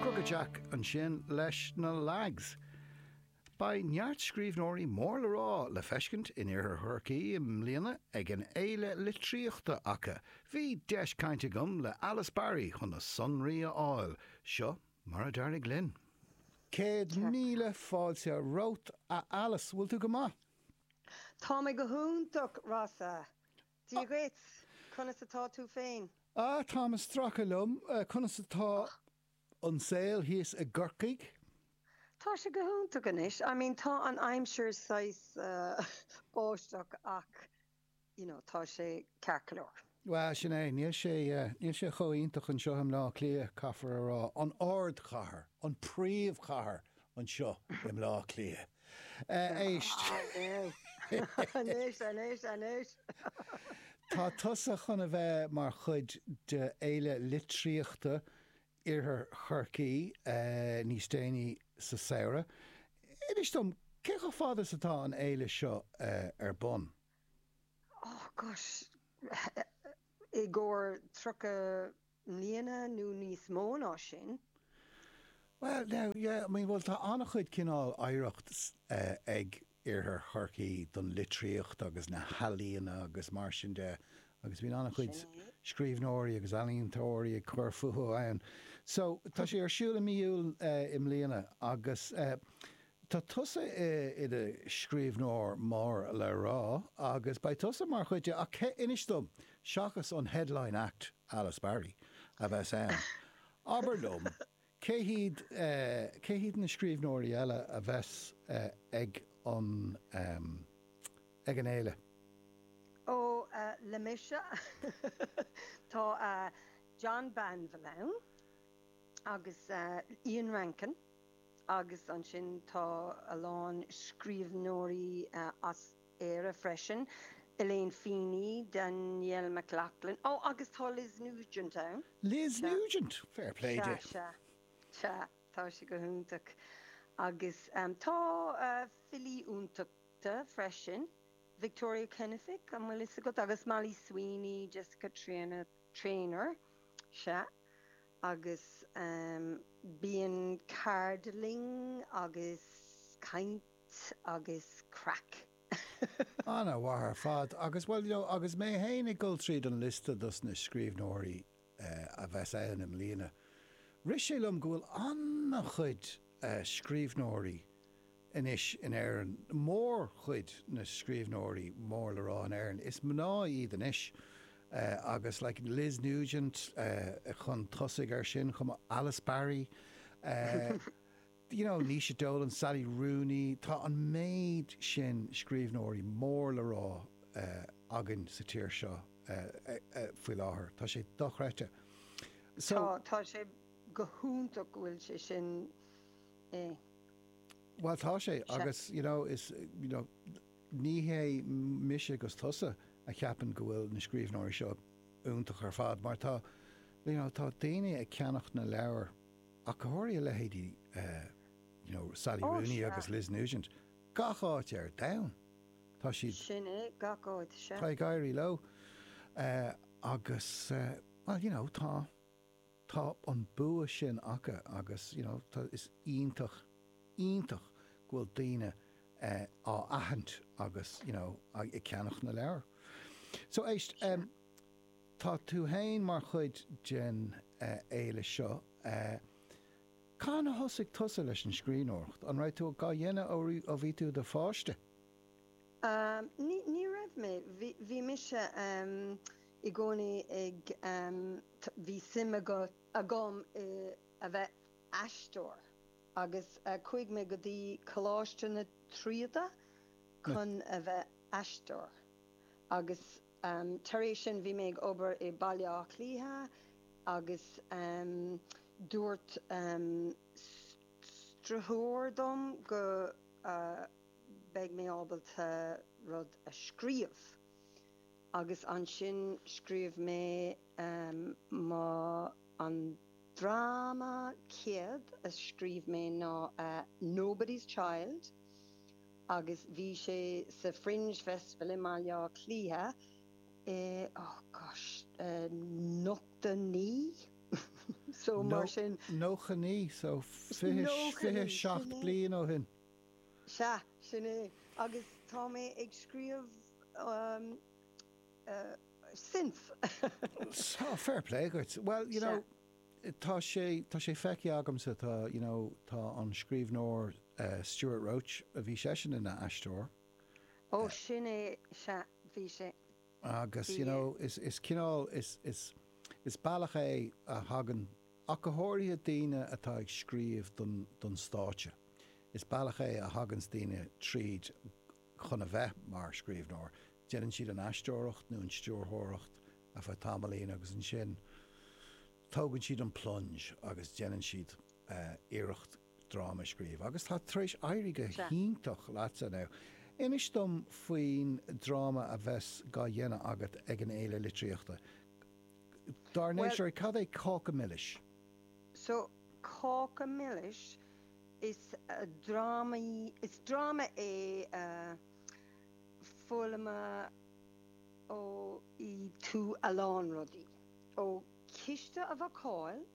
Cruga deas ansin leis na Lags. Beidh neart scríbhneoirí mór le rá le feiscint in iarthar Chorcaí i mbliana ag an fhéile litríochta acu. Bhí deis cainte agam le Alice Barry chun na sonraí a fháil. Seo mar a d'éirigh linn. Céad míle fáilte romhat a Alice. Bhfuil tú go maith? Tá mé go hiontach, Rossa. Dia dhuit! Conas atá tú féin? Ah, táim ag stracadh liom. Conas atá an saol thíos i gCorcaigh? Tá sé go hiontach anois. I mean, tá an aimsir saghas báisteach ach you know, tá sé ceart go leor. Bhuel, sin é. Níl sé, níl sé chomh iontach anseo i mBleá Cliath, caithfear a rá. An ardchathair. An príomhchathair. anseo i mBleá Cliath. Éist! Anois, anois, anois! Tá tusa chun a bheith mar chuid de Fhéile Litríochta Iarthar Chorcaí níos déanaí sa samhradh. Inis dom, cé chomh fada is atá an fhéile seo ar bun? Oh gosh, i gcomhair 30. mbliana nó níos mó ná sin. Bhuel, now, yeah, I mean, bhuel, tá an-chuid cineál oidhreacht ag Iarthar Chorcaí don litríocht agus na healaíona agus mar sin de agus bíonn an-chuid scríbhneoirí agus ealaíontóirí ag cur fúthu ann. So, tá sé ar siúl i mí Iúil i mbliana agus eh, Tá tusa i do scríbhneoir mór le rá agus beidh tusa mar chuid de ach cé, inis dom, seachas an headline act, Alice Barry, a bheas ann, abair liom, cé hiad, cé hiad na scríbhneoirí eile a bheas ag an, ag an fhéile? Ó, liomsa, tá John Banville ann agus Ian Rankin. Agus ansin tá a lán scríbhneoirí as Éire freisin, Elaine Feeney, Danielle McLaughlin, ó agus tá Liz Nugent ann! Liz Sea. Nugent! Fair play Sea, di. sea. Sea, tá sí go hiontach. Agus tá filí iontacha freisin, Victoria Kennefick, an bhfuil fhios agat? Agus Molly Sweeney, Jessica Traynor, Traynor, sea. agus bíonn ceardlanna agus caint agus craic. Ana mhaith ar fad agus, bhuel, you know, agus mé fhéin ag dul tríd an liosta dos na scríbhneoirí a bheas ann i mbliana, rith sé liom go bhfuil an-chuid scríbhneoirí Anois in Éirinn, mórchuid na scríbhneoirí mór le rá in Éirinn, is mná iad anois agus like Liz Nugent chun tosaigh ar sin chomh maith, Alice Barry, you know Naoise Dolan, Sally Rooney, tá an méid sin scríbhneoirí mór le rá againn sa tír seo faoi láthair, tá sé dochreidte. So. Tá, tá sé go hiontach go bhfuil sé sin eh. Bhuel, tá sé, agus you know, is, you know, ní hé mise 'gus tusa a cheapann go bhfuil na scríbhneoirí seo iontach ar fad, mar tá, you know, tá daoine ag ceannacht na leabhar ach go háirithe leithéidí you know, Sally Rooney agus Liz Nugent, gach áit ar domhan tá siad. Sin é, gach áit, sea. Tá ag éirí leo agus, well, you know, tá. tá an bua sin acu agus you know tá is iontach, iontach go bhfuil daoine eh á aithint agus you know ag ceannach na leabhar. So éist, Sure. em tá tú fhéin mar chuid den eh fhéile seo, eh cathain a thosaigh tusa leis an scríbhneoireacht, an raibh tú dhá dhéanamh ó bhí tú i do pháiste? Ní, ní raibh mé. Bhí, bhí mise i gcónaí ag, t, bhí suim agat, agam i, a bheith aisteoir agus chuaigh mé go dtí Coláiste na Tríonóide chun a bheith aisteoir agus tar éis sin bhí mé ag obair i Baile Átha Cliatha agus dúirt s, s, stiúrthóir dom go, beidh mé ábalta rud a scríobh. Agus ansin scríobh mé mo, an dráma céad a scríobh mé ná Nobody's Child agus bhí sé sa Fringe Festival i mBaile Átha Cliath i, oh gosh, nócha naoi, so mar sin. Nócha naoi, so fiche seacht bliain ó shin. Sea, sin é, agus tá mé ag scríobh since. Sea, fair play dhuit. Bhuel, you know, tá sé, tá sé feicthe agamsa, tá, you know, tá an scríbhneoir Stewart Roche, bhí seisean ina aisteoir. Ó, sin é, sea, bhí sé. Agus, you know, is, is cineál, is, is, is bealach é a thagann, ach go háirithe daoine atá ag scríobh don, don stáitse, is bealach é a thaganns daoine tríd chun a bheith mar scríbhneoir, déanann siad an aisteoireacht nó an stiúrthóireacht ar feadh tamaillín agus ansin tógann siad an plunge agus déanann siad iarracht dráma a scríobh agus tá tar éis éirí go hiontach leatsa inniu. Inis dom faoin dráma a bheas dhá dhéanamh agat ag an Fhéile Litríochta. Dár Well, ndeirtear, cad é cáca milis? so cáca milis is dráma í, is dráma é foghlamóidh tú a lán rudaí, ó chíste a bhácáil,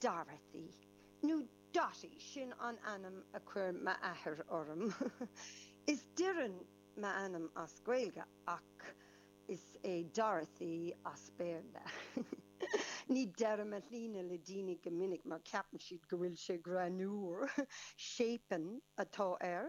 Dorothy, nó Dotty, sin an ainm a chuir m'athair orm. Is Doireann m'ainm as Gaeilge ach is é Dorothy as Béarla. Ní deirim mo shloinne le daoine go minic mar ceapann siad go bhfuil sé greannmhar. Séipean atá air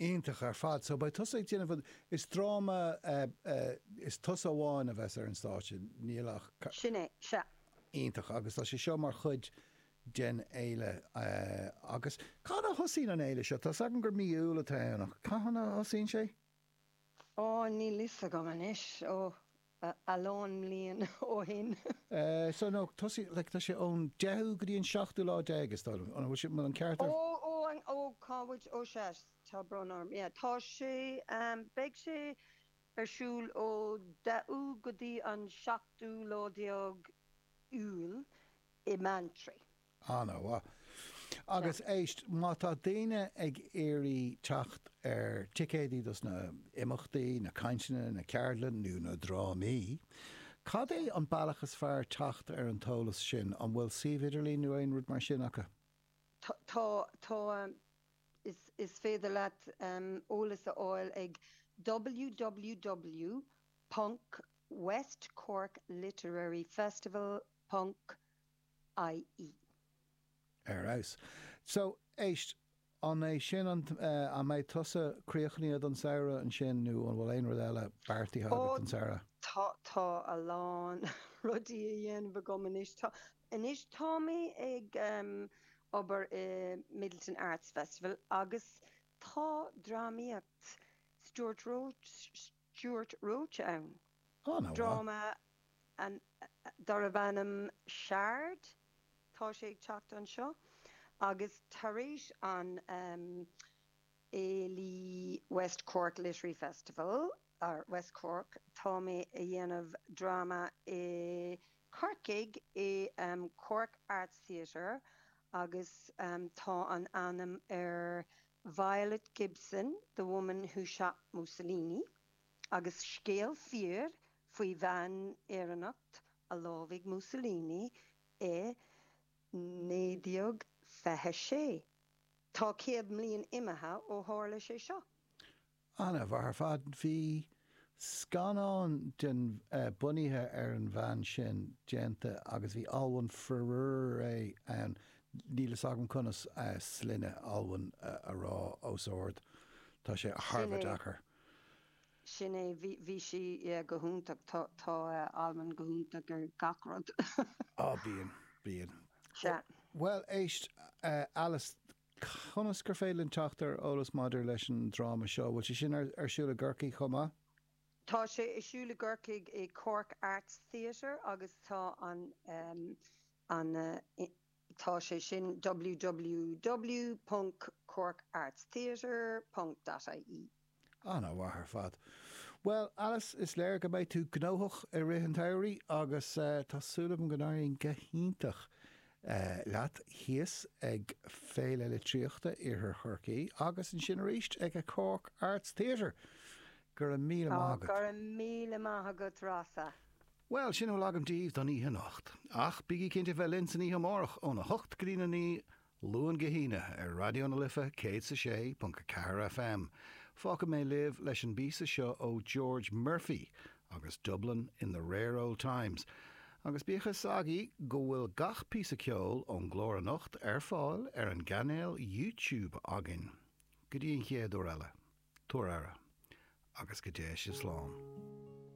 Iontach ar fad. So beidh tusa ag déanamh an, is dráma eh, is tusa amháin a bheas ar an stáitse, nach ea. Sin é, sea. Iontach agus tá sé seo mar chuid den fhéile eh, agus cathain a thosaíonn an fhéile seo? Tá's agam gur mí Iúil atá ann ach cathain a thosaíonn sé? Ó, níl fhios agam anois, ó, a lán mblian ó shin. So, no, tosaigh, like, tá sé ón deichiú go dtí an seachtú lá déag, is dóigh liom, an bhfuil sé, an bhfuil an ceart agam. Ó, ó, ó, cá bhfuil, ó, sea, tá brón orm, yeah, tá sé, beidh sé ar siúl ó deichiú go dtí an seachtú lá déag Iúil i mBeanntraí. Ana-mhaith. Agus éist, má tá daoine ag iarraidh teacht ar ticéadaí dos na himeachtaí, na cainteanna, na ceardlanna nó na drámaí, cad é an bealach is fearr teacht ar an t-eolas sin? An bhfuil suíomh idirlín nó aon rud mar sin acu? Tá, tá, tá. Is féidir leat eolas a fháil ag www.westcorkliteraryfestival.com. ie. Ar fheabhas. So, éist, an é sin an, eh, an mbeidh tusa críochnaithe don samhradh ansin nó an bhfuil aon rud eile beartaithe Ó, agat don samhradh? tá, tá a lán rudaí a dhéanamh agam anois. Tá, anois tá mé ag, em, obair i Midleton Arts Festival agus tá drámaíocht, Stuart Roche, Stuart Roche ann. Ana mhaith. Dráma darb ainm Shard tá sé ag teacht anseo agus tar éis an fhéile West Cork Literary Festival or West Cork tá mé a dhéanamh dráma i Corcaigh i Cork Arts Theatre agus tá an ainm ar Violet Gibson, The Woman Who Shot Mussolini, agus scéal fíor faoi bhean Éireannach a lámhaigh Mussolini i 1926. Tá céad mbliain imithe ó tharla sé seo. An-mhaith ar fad. Bhí scannán den, bunaithe ar an bhean sin déanta agus bhí Olwen Fouéré ann, níl fhios agam conas sloinne Olwen a rá os ard, tá sé thar a bheith deacair. Sin é, sin é, bhí sí go hiontach, tá Olwen go hiontach i ngach rud. Á bíonn, bíonn. Sea. Bhuel éist Alice. Conas gur féidir linn teacht ar eolas maidir leis an dráma seo? Bhfuil sé sin ar siúl i gCorcaigh chomh maith? Tá sé ar siúl i gCorcaigh i Cork Arts Theatre agus tá an an tá sé sin www.corkartstheatre.ie. Ana-mhaith ar fad. Bhuel, Alice, is léir go mbeidh tú gnóthach i rith an tsamhraidh agus tá súil agam go n-éiríonn go hiontach leat thíos ag Féile Litríochta Iarthar Chorcaí agus ansin arís ag an Cork Arts Theatre. Go raibh míle maith agat. Go raibh míle maith agat, Rossa. Bhuel, sin a bhfuil agam daoibh don oíche anocht. Ach bígí cinnte bheith linn san oíche amárach óna hocht go dtí a naoi Luan go hAoine ar Raidió na Life 106.4 FM, fágfaidh mé libh leis an bpíosa seo ó George Murphy agus Dublin in the Rare Ould Times, agus bíodh a fhios agaibh go bhfuil gach píosa ceoil ón gclár anocht ar fáil ar an gcainéal YouTube againn. Go dtí an chéad uair eile, tabhair aire, agus go dté sibh slán.